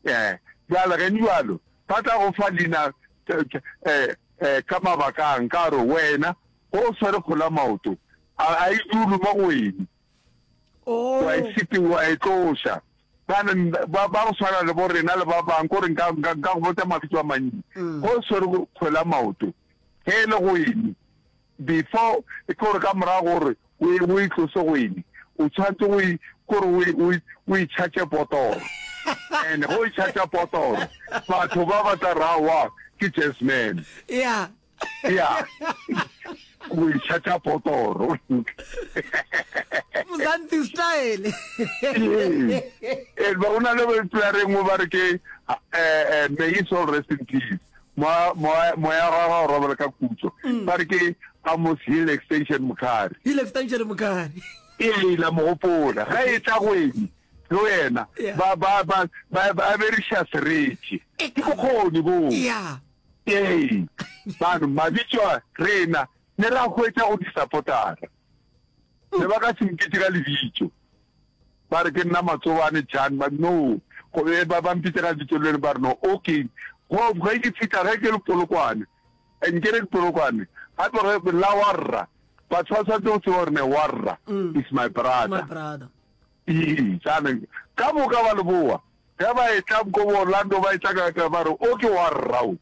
Ee, bjale ge nibjalo, ba tla go fa lina ka mabaka a nka gore wena ge o swere kgola maoto, a a e dulu mo go wene. Oh. Wa e sete, wa e tloša. Bana ba ba go swana le bo rena le ba bang gore nka nka nka go botsa mabitso a mantsi. Mm. Go swere kgola maoto. Ge e le go ene, Before, e kore ka morago gore o e, o e tlose go ene, o tshwanetse go e, kore o e, o e, o e charge potoro. And go e charge potoro, batho ba ba tla ra wa ke Jazzman. Yeah. Yeah. Go e charge potoro. Mzansi style. Eh, ba una le ba iplareng mo ba re ke eh, eh, may his soul rest in peace. Moya, moya, moya wa gagwe o robela ka kutso. Ba re ke Amos Hill Extension Mokhari. Hill Extension Mokhari. Ee, la mo gopola. Ga e tla go ene, le wena, Yeah. ba, ba, ba, ba, ba beriša sereti. E Ke ka- bokgoni boo. Ya. Ee, mano, mabitso a rena ne ra hwetša go disapotara. ne ba ka se mpitse ka lebitso ba re ke nna matsobane chan ba no go be ba ba mpitse ka lebitso le ba re no okay go ga ke fitla ge ke le polokwane and ke re ke polokwane ga tloge la warra batho ba tshwanetse go tseba gore ne warra mm. is my brother ee jaanong ka moka ba leboa ge ba etla ko bo orlando ba etla ka ba re o ke warra o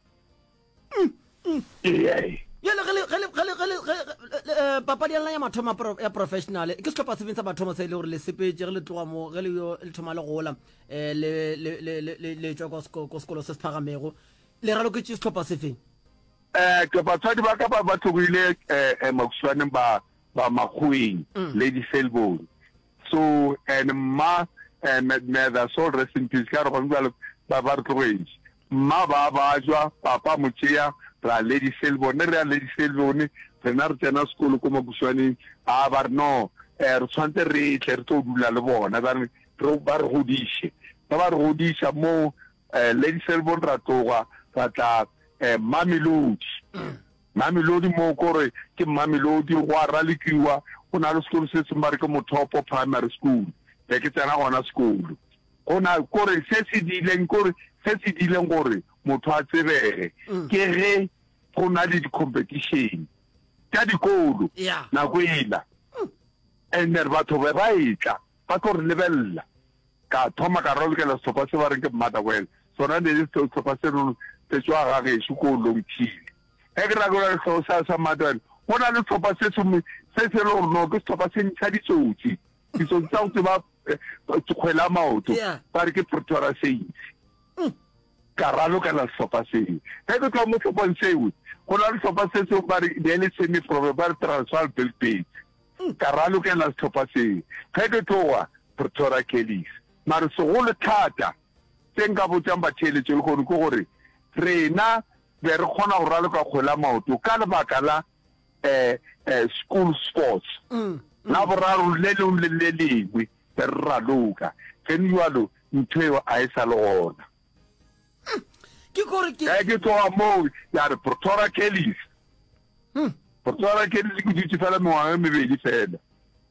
papadi ya lena ya mathomo ya professional ke setlhopha sefeng sa mathomo se e le gore le sepetse ge le tloga mo ge le yo le thoma le gola um le tswa ko sekolo se se phagamego le raloketse setlhopha sefeng um ke batswadi ba ka ba ba tlogile um makuswaneng ba ba makgoeng mm. lady selbone so and mma um the soul rest in peace ka re gone jalo ba ba re tlogetse Mma ba a bajwa, Papa a mo tšea, re a Lady Selborne. Re a Lady Selborne, rena re tsena sekolo ko Makuswaneng. A ba re, No, eh, re tshwantse re tle re tlo dula le bona, ba re, re, ba re godiše. Ge ba re godiša mo, eh, Lady Selborne ra tloga ra tla, eh, Mamelodi. Mamelodi moo ko re ke Mamelodi, go a ralokiwa, go na le sekolo se sengwe ba re ke Mothopo Primary School, be ke tsena gona sekolo. Gona kore se se dileng kore se se dileng gore motho a tsebege mm. ke ge go na le di-competition ka dikolo nako ela mm. and re batho be ba etla ba tlo re lebelela ka thoma ka rolokela setlhopha se ba reng ke mmata wena sona ne le setlhopha se rone se tswa ga gešo ko long chile ge ke rakola setlhogo sa sa mmata wena go na le setlhopha se se le gore no ke setlhopha se ntsha ditsotsi ditsotsi tsa go tseba kgwela eh, maoto ba re ke pretoria sale mm. ka ralokela sehlopha seo ge ke tloga mo tlhophong seo go na le sehlopha se seo ba re ne le semi probe ba re transal belbate mm. ka ralokela sehlopha seo ge ke tloga pretoria calis mare segolo thata se nka botsang batheeletso le kgone ke gore rena be re kgona go raloka kgwela maoto ka lebaka la eh, eh, school sports mm, mm. la boraro le lengwe le le lengwe re raloka then jalo ntho eo a e sa le gona hmm. ke kore ke eh, ke tloga moo ya re protora kellis hmm. protora kellis ke dutse fela mengwaga e mebedi fela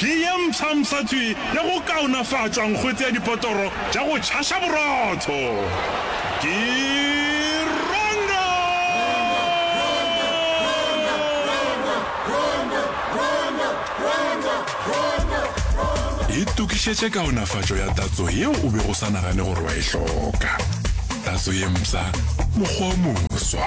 Ke ye mpshampsha tswi ya go kaonafatšwa nkgwete ya dipotoro tša go tšhaša borotho. Ke Rongo! Itokišetše kaonafatšo ya tatso yeo o bego o sa nagane gore wa e hloka. Tatso ye mpsha, mokgwa o moswa.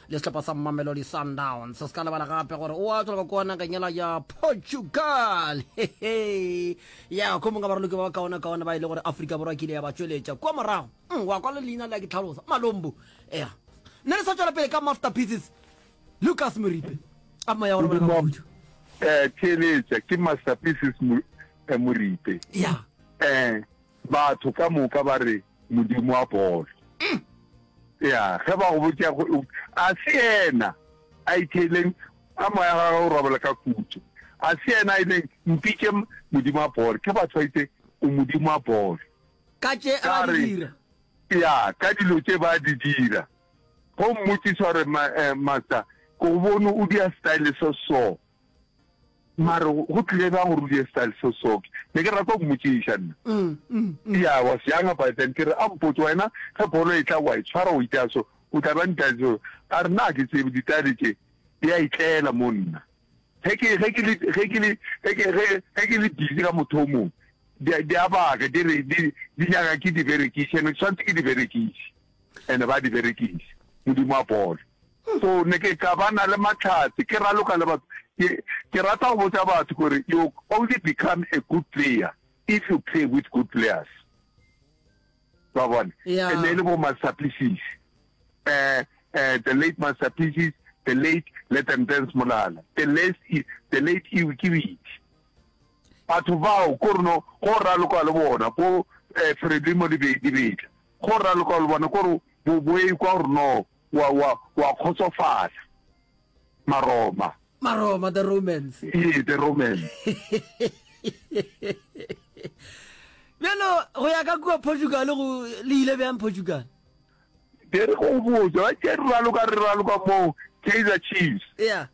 le sehlopha sa Mamelodi Sundowns. Se se ka lebala gape gore o a tswa kua nageng yela ya Portugal hehe ya ko mongwe baraloki ba ba kaona kaona ba e le gore Afrika Borwa ke ile ya ba tšweletša kua morago mm, wa kwa le leina le ya ke tlhalosa malombo ea ne re sa tšwela pele ka masterpieces Lucas Moripe a moya gore bona ka khutšo eh theletša ke masterpieces eh, Moripe ya eh batho ka moka ba re Modimo wa bolo. Ya, ge ba go botša go a se yena a itheleng a moya ga o robela ka kutso. A se yena a ileng mpitše Modimo wa bolo. Ke batho ba itse o Modimo wa bolo. Ka tše a ba di dira. Ya, ka dilo tše ba di dira. Go mmotšiša gore eh, master ke go bone o dia style so so. mare go tlile bjang gore o die style so soft ne ke rata go mmotšiša nna mm, mm, mm. ya wa seanga by then ke re a mpotse wena ge bolo e tla wa e tshwara o itea so o tla ba ntaso a re na ke tsebe ditale tše di a itlela mo nna ge ke ge ke le ge ke le ge ke ge ge ke le busy ka motho o mongwe di a baka di re di di nyaka ke di berekiše ne ke tshwanetse ke di berekiše and ba di berekisa modimo a bolo so ne ke ka ba na le matlhatse ke raloka le batho ke rata go botsa batho gore you only become a good player if you play with good players ba bone e ne e le bo masapisis um eh, eh, the late masapisis the late let them dance molala the late the late iwe ke bitse batho bao ko reno go raloka le bona bo um eh, fredimo dibetla Ge o raloka o le bona kore bo bo ekwa gore no wa wa wa kgotsofala. Maroma. Maroma the Romans. Ee the Romans. Bjalo go ya ka kua Portugal go le ile bjang Portugal? Ke re go botsa ba tšere raloka re raloka mo Kaizer Chiefs. Yeah.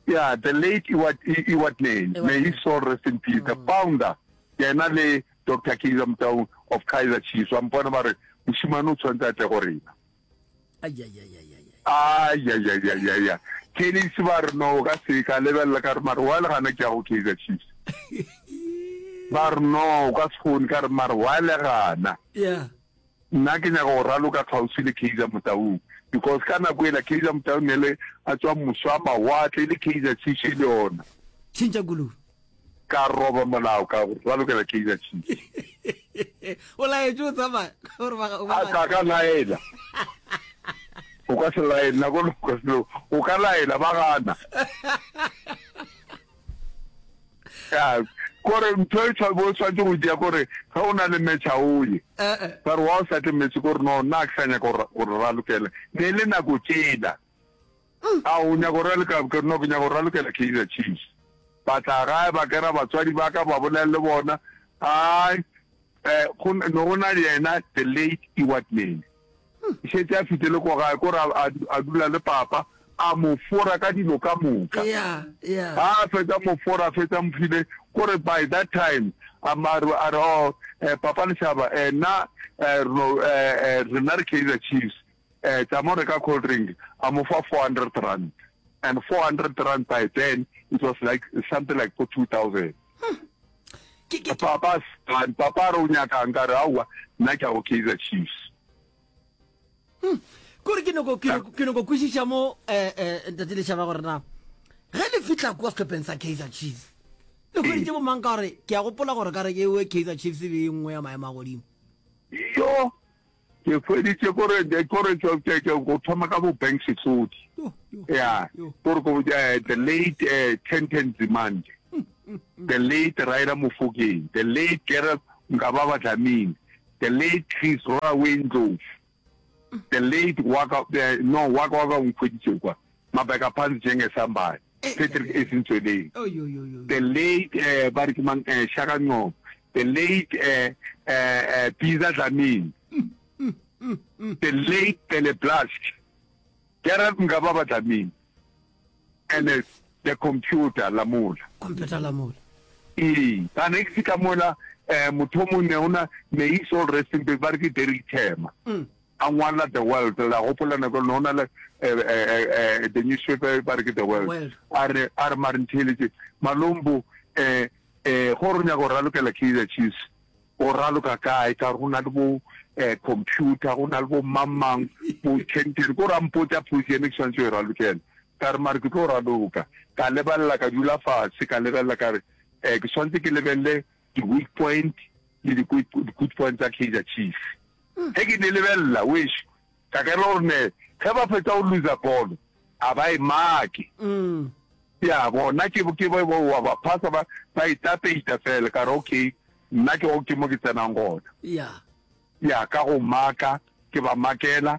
Yeah, the late Iwat I Iwat Nene, may his soul rest in peace. Mm. The founder, yena le Dr. Kaizer Motaung of Kaizer Chiefs, wa mpona ba re, moshimane o tshwanetse a tle go rena. Ayayayayaya. Kelly se ba re no o ka se ka lebelela ka re mare wa le gana ke ya go Kaizer Chiefs. Ba re no o ka se kgone ka re mare wa le gana. Yeah. Nna ke nyaka go raloka kgauswi le Kaizer Motaung because ka nako ela Kaizer Motaung ne le a tswa moswa mawatle le Kaizer Chiefs e le yona. Tšhentša koloi. Ka roba molao ka ralokela Kaizer Chiefs. O laetše o tsamaya gore ba ga o ba. Ka ka laela. O ka se laela nako o ka laela ba gana. kore ntho e tshwabe o tshwanetse go dia kore ge o na le metšha o ye ba re wa o sa tle metse kore no nna ke sa nyaka gore ra lokela ne le nako tsela mm. a o nyaka gore lekabokere no ke nyaka gore ra lokela kaizer chiefs ba tla gae ba kera batswadi ba ka ba bolele le bona ai Eh, go ne go na le yena the late Stewart Mele. E šetše a fitile ko gae, ko ra a du- a dula le papa, a mo fora ka dilo ka moka. ya ya Ha a fetsa mo fora, a fetsa mo file, ko re by that time, a ma- re- a re, oh, eh, papa Lešaba, eh, na, eh, re no- eh, eh, rena re Kaizer Chiefs, eh, tša mo reka cold drink a mo fa 400 rand and 400 rand by then it was like something like for 2000 papa and papa re o nyakang ka re aowa nna ke a go kaizer chiefs hmm. kore ke noko kwešiša mo um eh, eh, ntate lešaba gore na ge le fitlha kua setlhopheng sa kaizer chiefs le kgweditše bomang ka gore ke a gopola gore ka re ke ewe kaizer chiefs e be e nngwe ya maemo a godimo yo Ke hweditše kore the kore ke ke ke go thoma ka bo bank setlodi. Yeah, kore go eh, the late eh, Tenten Zimande, the late Raira Mofokeng, the late Gerald Ngababa Dlamini, the late Chris Roraway Ndlovu, the late Waka eh, no Waka Waka o nkhweditše kwa. Mabeka Pants Jeng Esambai, Patrick Ace Ntsweleng, the late eh ba re ke mang eh Shaka Ncobo, the late eh eh eh Pizza Dlamini, the late Pele Blask, Gerald Mngababa Dlamini, and eh, the computer Lamola. Computer Lamola. Ee, ka ne ke fihla mola eh motho o mongwe ona may his soul rest in peace ba re ke Derrick Thema. A ngwala The World, la gopola nako e lona o na le the newspaper ba re ke The World, a re, a re mare ntheeletše Malombo, gore o nyaka go ralokela Kaizer Chiefs, o raloka kae ka gore go na le bo computer, go na le bo mang-mang, bo Kenton, ko ra mpotša potso ena ke swanetše go e ralokela. Ka re mare ke tlo raloka, ka lebelela, ka dula fase ka lebelela ka re ke swanetše ke lebelele di-weak point le di-good point tsa Kaizer Chiefs. Ge ke ne lebelela wešo ka kena gore ne ge ba fetsa go loser bolo a ba e make ya bona ke ke ba wa ba phasa ba ba itapeita fela ka re okay nna ke go ke mo ke tsenang gona ya ka go maka ke ba makela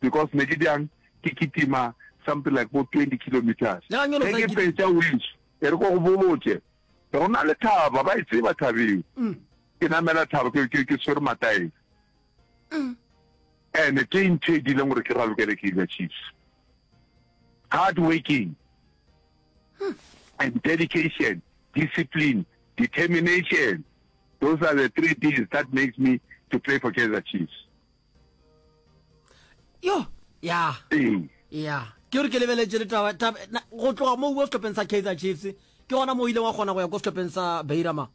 because ne ke bjang ke kitima something like bo 20 kilometres ge ke fetša o iso e re ko go botše go na le thaba ba e tseba thabeng mm. ke namela thaba ke ke ke swere mataeng mm. ene ke ntho e dileng gore ke ralokele ke ile chiefs hard working hmm. and dedication discipline determination those are the three things that makes me to play for kaizer chiefs yo ya ya ke gore ke lebeletse le taba go tloga mo uwe setlhopheng sa kaizer chiefs ke gona mo o ileng wa kgona go ya ko setlhopheng sa beirama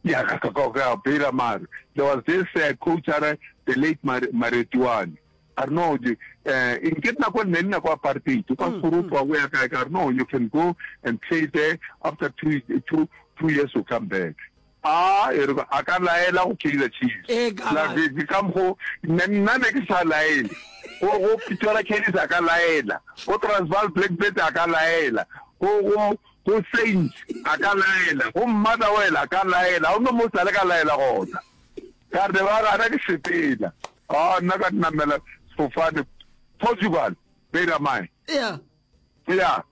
ya ka ka ka beirama there was this uh, coach are the late maretiwane a re no eh in ke nako nne nna kwa apartheid kwa mm, soro mm. tswa go ya kae ka re no you can go and play there after two two two years you come back A e re ba, a ka laela go Kaizer Chiefs? Ee, ka La gana. Vezi, ka mokgo ne nna ne ke sa laele. Go, go Pretoria Callies a ka laela. Go Transvaal Black Birds a ka laela. Go, go, go Saints a ka laela. Go Motherwell a ka laela. Ga go no mo sa le ka laela gona. Ka re, ba gana ke sepela. A nna ka namela sefofane Portugal, Beira-Mai. Ea. Ea,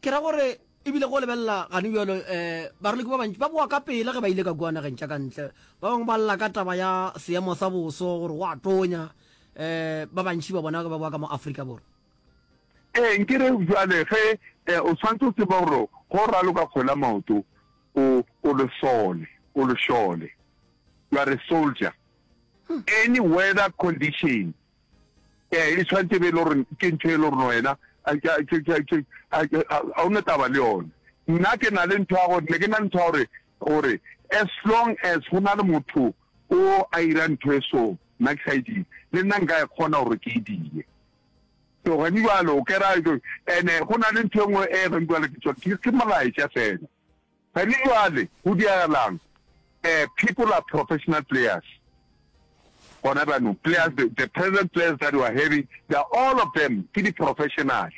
Ke ra gore e bile go lebelela gane bjalo, baraloki ba bantši ba boa ka pela ge ba ile ka kua nageng tša ka ntle. Ba bangwe ba lla ka taba ya seemo sa boso, gore go a tonya. Ba bantši ba bona ba boa ka mo Afrika Borwa. Ee, nke re bjale ge o swanetše o tseba gore ge o raloka kgwele ya maoto, o, o lesole, o lešole. You are a soldier. Any weather condition, Ee, e tshwanetse e be e le gore ke ntho e le gore wena ga o ne taba le yone. Nna ke na le ntho ya gore ne ke na le ntho ya gore gore as long as go na le motho o a ira ntho e so nna ke sa e dire le nna nka e kgona gore ke e dire so gane jalo o kera ene go na le ntho e nngwe e gane jalo ke tsone ke molaetša fela Re le bjale go diragala'ng? Eh, people are professional players gona bjanong. Players, the, the present players that we are having, they are all of them ke di-professional.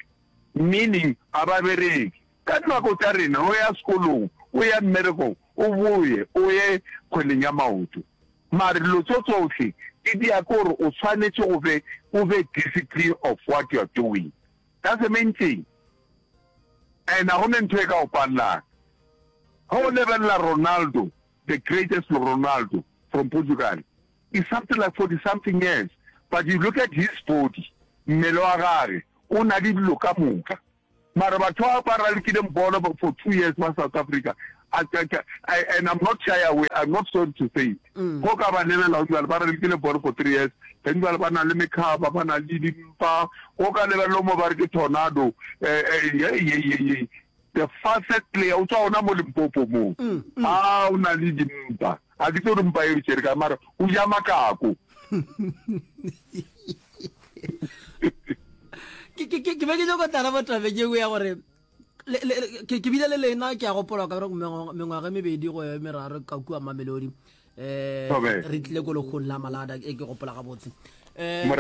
Meaning, ga ba bereke. Ka dinako tša rena, o ya sekolong, o ya mmerekong, o boye, o ye kgweleng ya maoto. Mare dilo tso tsohle di dia ke gore o swanetše o be, o be discipline of what you are doing. Ka sementšeng, a na go ne ntho e ka o palelang ge o lebelela Ronaldo, the greatest Ronaldo from Portugal, is something like 40 something years, but you look at his body, mmele wa gage o na le dilo ka moka. Mara batho ba ba ralekileng bolo for two years ba South Africa a tša tša and I'm not shy away I'm not sorry to say it mm. go ka ba lebelela go dibale ba re ke le ball for three years ge dibale ba na le mekhaba ba na le dimpa go ka lebelelo mo ba re ke tornado eh, eh, the fastest player o tswa ona mo limpopo moo mm, mm. a o na le dimpa ga ke tse re mpa e bitsere ka mara o ja makako ke be ke nyoko tara botabeng e nngwe ya gore ke bile le lena ke a gopola ka mengwaga e mebedi go e meraro ka kua mamelodi um re tlile ko lekgong la malada e ke gopola gabotse um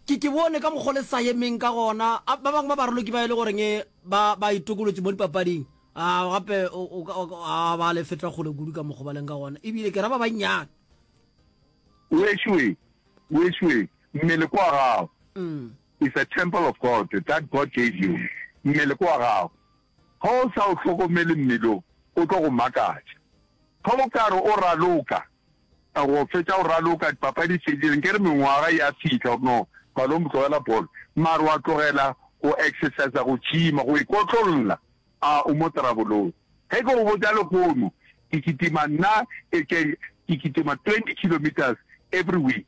ke ke bone ka mokgwa le sa yemeng ka gona ba bangwe ba baroloki ba e le goreng e, ba ba itokolotse mo dipapading a gape a ba le fetla kgole kudu ka mokgwa ba leng ka gona ebile ke ra ba bannyane wešwe wešwe mmele kwa gago mm. is a temple of God that God gave you, mmele ke wa gagwe, ge o sa o hlokomele mmele o, o tlo go makatša. Ge o ka re o raloka, go fetša go raloka, dipapadi di fedile, nke re mengwaga ya fihla, o no palong go tlogela bolo, mare wa tlogela go exercisa, go gyma, go ikotlolla, a o mo trabolong. Ge ke go botša lehono, ke kitima nna, ke kitima twenty kilometres every week.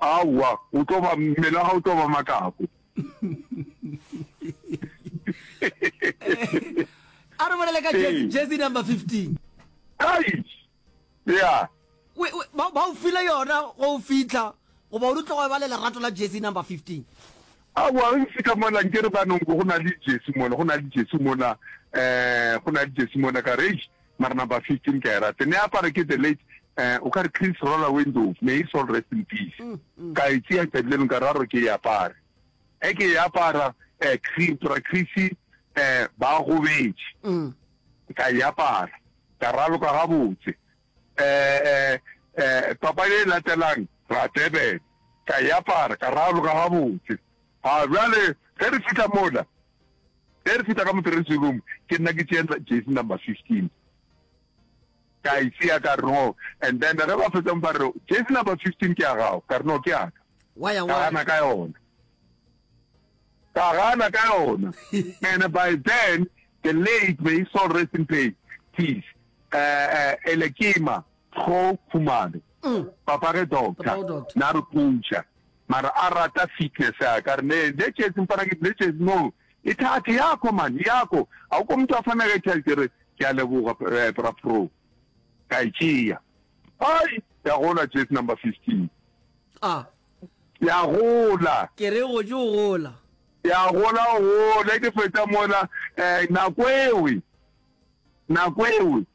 Aowa, o tlo ba mmele wa gago tlo ba makako. a re bolele ka jersey number 15 ai ya ba o file yona go o fitlha goba o di tlogo ba le lerato la jersey number 15 aowa re fitlha mola nke re banong go na le jersey mola go na le jersey mola um go na le jersey mola ka rage Mara number 15 ke a e rate. Ne apara ke the late eh o ka re Chris Roller Windows, may his soul rest in peace. Mm, mm. Ka e tsia tšatši leno ka raro ke e apare. E ke e apara eh Chris Bra Chris eh ba gobetše. Mm. Ka e apara. Ka raloka gabotse. Eh eh eh papa e latelang ra Durban. Ka e apara ka raloka gabotse. Ha jwale ge re fihla mola Ge re feta ka mo dressing room, ke nna ke tšea jersey number 15 ka e tšea ka re no, and then ge ba fetsa ba re jersey number 15 ke ya gago, ka re no ke ya ka. Wa ya wa. Ka gana ka yona. Ka gana ka yona. And by then the late may his soul rest in peace, peace. Uh, uh, Elekima Kgo Khumalo. Mm. Papa ge doctor. Papa doctor. Na re coacha. mara a rata fitness ya ka re ne ne tšetsi mpana ke ne tšetsi no e thathe yako man yako a ko motho a fana ka tšhelete re ke a leboga eh, bra pro ka e tšea ai ya gola tšetsi number 15 a ya gola ke re go tšo gola ya gola gola ke fetsa mola eh nako ewe nako ewe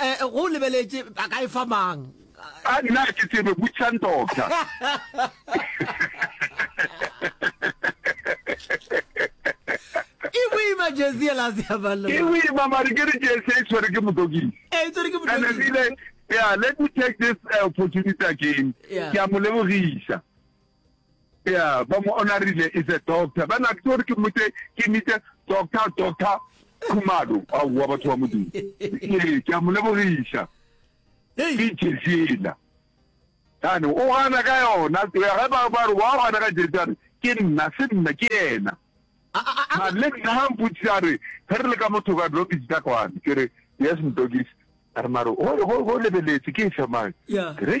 Eh, go lebeletše a ka e fa mang a nna ke tsebe butšang doctor e boima jesi ela se ya balo e boima mare ke re jesi e tshwere ke motokisi e tshwere ke motokisi yeah let me take this uh, opportunity again ke a mo lebogisa Yeah, ba mo onarile is a doctor. Ba na ke gore ke motse ke mite doctor doctor Khumalo. A wa batho ba modimo. Ke ke mo lebogisha. Ke Jesela. Kana o gana ka yona. Ke ga ba ba wa gana ka Jesela. Ke nna se nna ke yena. A a a. Ma le nna ha mputsa re re le ka motho ka lobi tsa kwane. Ke re yes mdogis. Armaro o go go lebeletse ke sa mang. Yeah. Ke re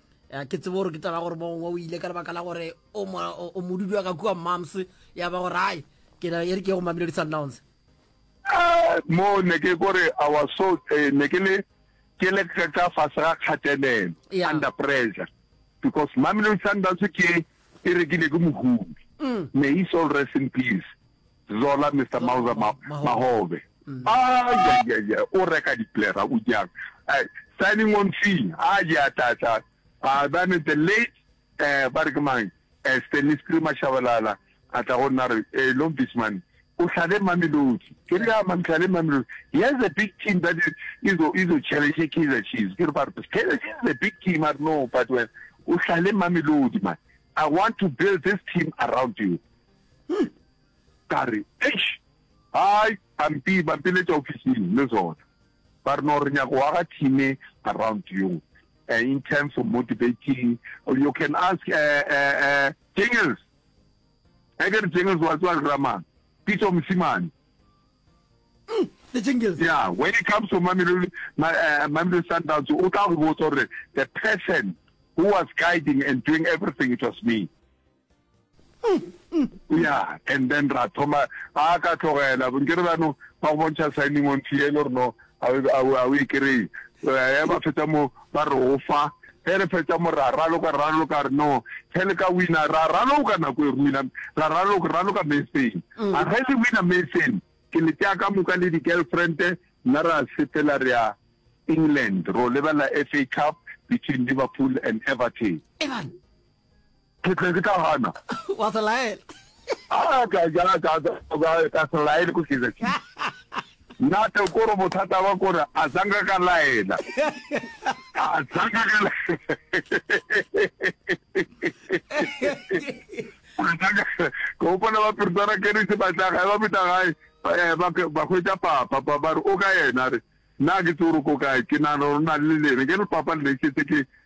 ya ke tsebo gore ke taba gore mongwe o ile ka lebaka la gore o modudi wa ka kua moms ya ba gore ai ke na e re ke go mamelodi sundowns ah, mo ne ke kore our so eh, ne ke le ke le ka fase ga kgatelelo under pressure because mamelodi sundowns ke e rekile ke mohumi mm. may he soul rest in peace Zola, Mister Mauzer Ma, Mahobe. Ayayaya, o reka diplera, o jang. Uh, signing on fee, a je a tla tla. Uh, then the late, uh, ba re ke mang, uh, Stanley Screamer Shabalala, a tla go nna re, eh, Long Beach man, o hlale Mamelodi. Ke re ya man, hlale Mamelodi. He has a big team that is, is, a, is a challenge Kaizer Chiefs. Ke re ba re, Kaizer Chiefs is a big team, I know, but when, o hlale Mamelodi man. I want to build this team around you. Hei! Ka re, Eish! Hai! Ba mpi, ba mpiletša ofising le zona. Ba re, No, re nyaka go aga thime around you, uh, in terms of motivating, you can ask, uh, uh, uh, Jingles. Ge ke re Jingles, wa tseba ke ra mang? Pitso Mosimane. Mm, the Jingles. Yeah, when it comes to Mamelodi, my, uh, Mamelodi Sundowns, o tla go botsa gore the person who was guiding and doing everything, it was me. ya and then ra thoma a ka tlogela nke re bano ba go bontšha signing on tee e le gore no a o e kry-e eh, ba fetsa mo ba re o fa ge re fetsa mo ra raloka raloka re no ge le ka wina ra raloka nako e re wina ra raloka raloka meseng mm. a ge le wina meseng ke le tea ka moka le di-girlfriend nna ra sepela re ya england ro lebelela f a cup between liverpool and everton ke tle ke tla gana wa se laela a ka ja ka ka ka se laele ko se ke nna te ko re bothata ba ko re a zanga ka laela a zanga ka ke opana ba pirtana ke re se ba tla ga ba bita gae eh, ba ba hwetsa papa ba ba re o ka yena re na ke tsoro ko kae ke na rona le lene ke re papa le ke ke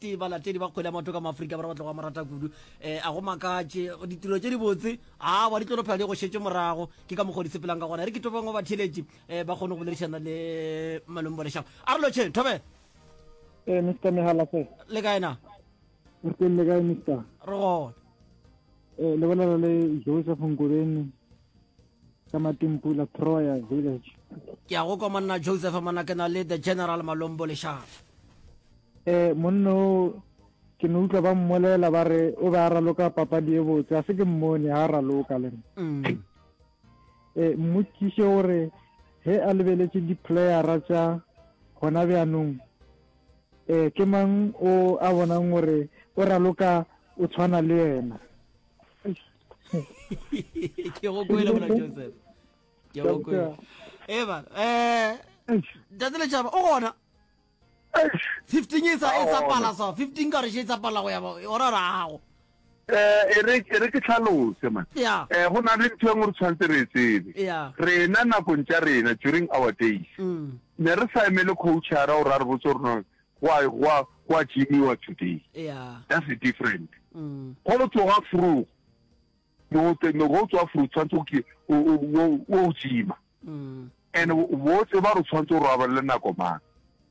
tee balatedi ba kgwele ya maoto ka maaforika borwa ba tlogo mo rata kudu um a go makatše ditiro tše dibotse awa di tlolophela di go šetse morago ke ka mokgwa di sepelang ka gona re ke tobeng wa batheletši um ba kgone go boledišana le malome bolešago a re lotšheng thobe ee mr megala se le kae na re teng le kae mr re gona um lebelela le joseph nkobeni ka matumpula troya village ke a go kwa monna joseph mona ke na le the general malombo lešafa um monna o ke ne utlwa ba mmolela ba re o be a raloka papadi e botse a se ke mmone ga a raloka le um mm. eh, mmotšiše gore ge a lebeletše di-playera tša gona bjanong um ke mang o a bonang gore o raloka o tshwana le yena ke go kwele mona joseph ke go kwele eba eh tsatsi le tšaba o gona fifteen e sa e sa pala so fifteen ka re she e sa pala go ya ba o ra rago eh e re e re ke tlhalose man ya eh go na le ntho e ngwe re tshwantse re tsebe ya rena nakong tša rena during our days mm. ne re sa emele coachara o ra re botse rona Gwa, gwa, gwa gymiwa today. Yeah. That's the different. Mm. Go lo tloga frugo. Mote, no go tswa frugo, tshwanetse ke, o, o, o, o gyma. Mm. And wo tseba re tshwanetse go raba le nako mang.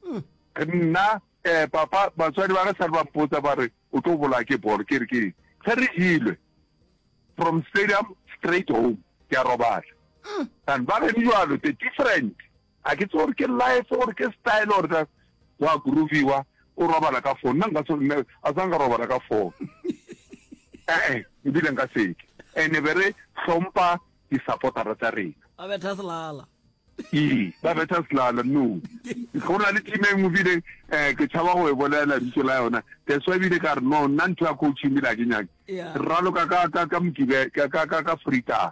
Mm. Nna, eh, papa, batswadi ba ka sa ba mpotsa ba re, o tlo bola ke bolo, ke re ke, ge re jilwe, from stadium straight home, ke a robala. Mm. And ba re jalo, the different. A ke tsebe gore ke life gore ke style or that wa grooviwa o robala ka phone nna nka se nne a tsanga robala ka phone eh eh ebile nka seke ene be re hlompa di supportera tsa rena ba betha selala ee ba betha selala no go na le team e nngwe bile um eh, ke tshaba go e bolela bitso la yona that's why bile ka re no nna ntho ya coaching bile a ke nyake raloka ka ka ka mokibe ka ka ka freetime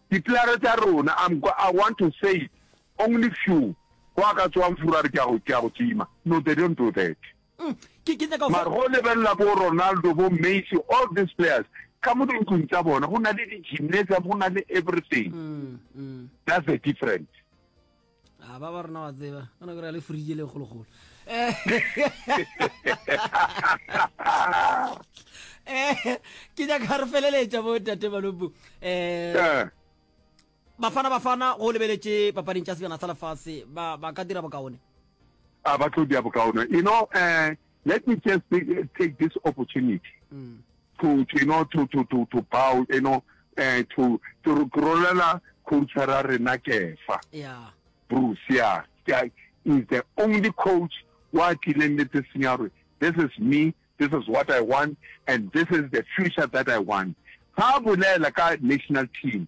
Diplare tša rona, I'm go, I want to say it, only few, go a ka tsoang furu a re ke a go, ke a go tima. No, they don't do that. Mm, ke, ke nyaka go. Mara go lebelela bo Ronaldo, bo Messi, all these players, ka mo dintlong tsa bona, go na le di-gymnasium, go na le everything. Mm, mm. That's the difference. a ba ba rena wa tseba ka nako re ya le fridge le kgolokgolo eh ke ja ka re feleletša bo tate balobu eh, eh. bafana bafana go lebeletše papading tša sejana sa lefase ba ka dira bokaone a ba tlo dia bokaone you know eh Let me just take this opportunity mm. to, to, you know, to, to, to, to bow, you know, uh, to, to rolela coach ra rena kefa yeah. bruce ya yeah. is the only coach wa tlileng le tse senyarwe this is me this is what i want and this is the future that i want ha bolela ka national team